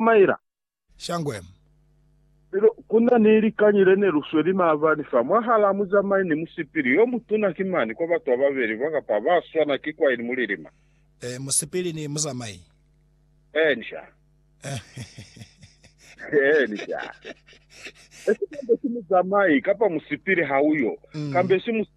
Ismaila. Shangwe. Lelo, ku na ni likañi le ne lu sweli maabani fa, mwahalaa muzamai ni musipili yo mutuna ki mani kwa batu ba babeli ba kapa ba swana ki kwaini mu lilima. Ee, musipili ni muzamai. Ee, inca. Ee, inca. Esi kambe si muzamai, kapa musipili ha uyo, kambe si musipili.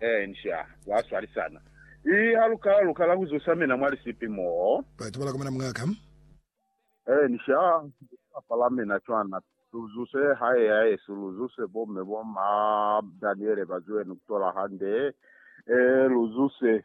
Ee, nca kwa swalisana. I haluka luka la ku zusa mina mwa lisipi moo. Batu ba la komana muñaa ka. Ee, nca kwa pala mina cwana. Lu zuse hae ya yesu, lu zuse bo mme bo ma Daniele ba zwenu ku tola hande. Ee, lu zuse.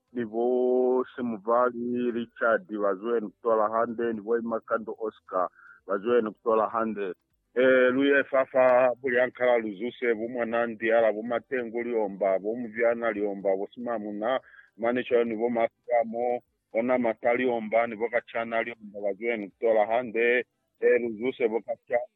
ni bo Semuvali Richard ba zwene kutola hande, ni bo Imakando Oscar ba zwene kutola hande. E, lu ye fa fa bulyankala lu zuse bo Mwanandiala, bo Matengu Liomba, bo Mubyana Liomba, bo Simamuna mane cwalo, ni bo Masilamo, bo Namata Liomba, ni bo Kachana Liomba ba zwene kutola hande. E, lu zuse bo Kachana.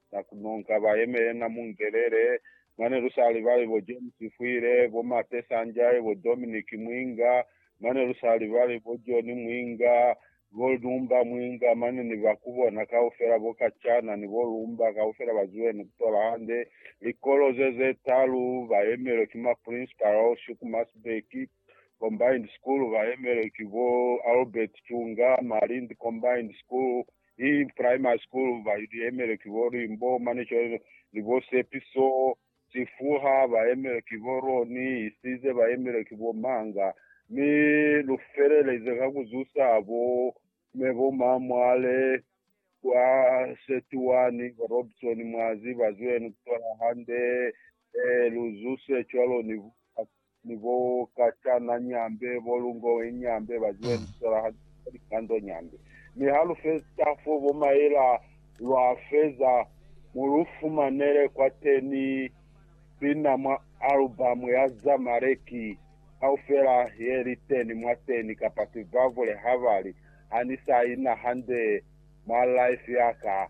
na ku nonka ba yemele na mu ngelele mane lu sa libali bo James Fwile, bo Mate Sanjay, bo Dominic Mwinga, mane lu sa libali bo John Mwinga, bo Lumba Mwinga mane ni ba ku bona kaufela bo Kachana ni bo Lumba kaufela ba zuwe ni ku tola hande likolo ze ze talu ba yemelwe ki ma Principal Shuku Masbeki. Combined School ba yemelwe ki bo Albert Chunga, Malindi Combined School i Primary School ba yemelwe ki bo Limbo Manechole ni bo Sepiso, Chifuha ba yemelwe ki bo Roni, Isize ba yemelwe ki bo Manga mi lu feleleze ka ku zusa bo me bo Mamwale kwa Setuwani, bo Robson Mwazi ba zwenu ku tola hande, e lu zuse cwalo ni bo ni bo kacana nyambe, bo lungoe nyambe, ba zibe lisola ha li feza likando nyambe. Mi ha lu feta fo, bo maela lwa feza, mu lu fumanele kwateni pina mwa alubamu ya Zamaleki kaufela ye li teni mwateni, kapa Sivavule ha ba li, Ha ni sa ina hande mwa life ya ka.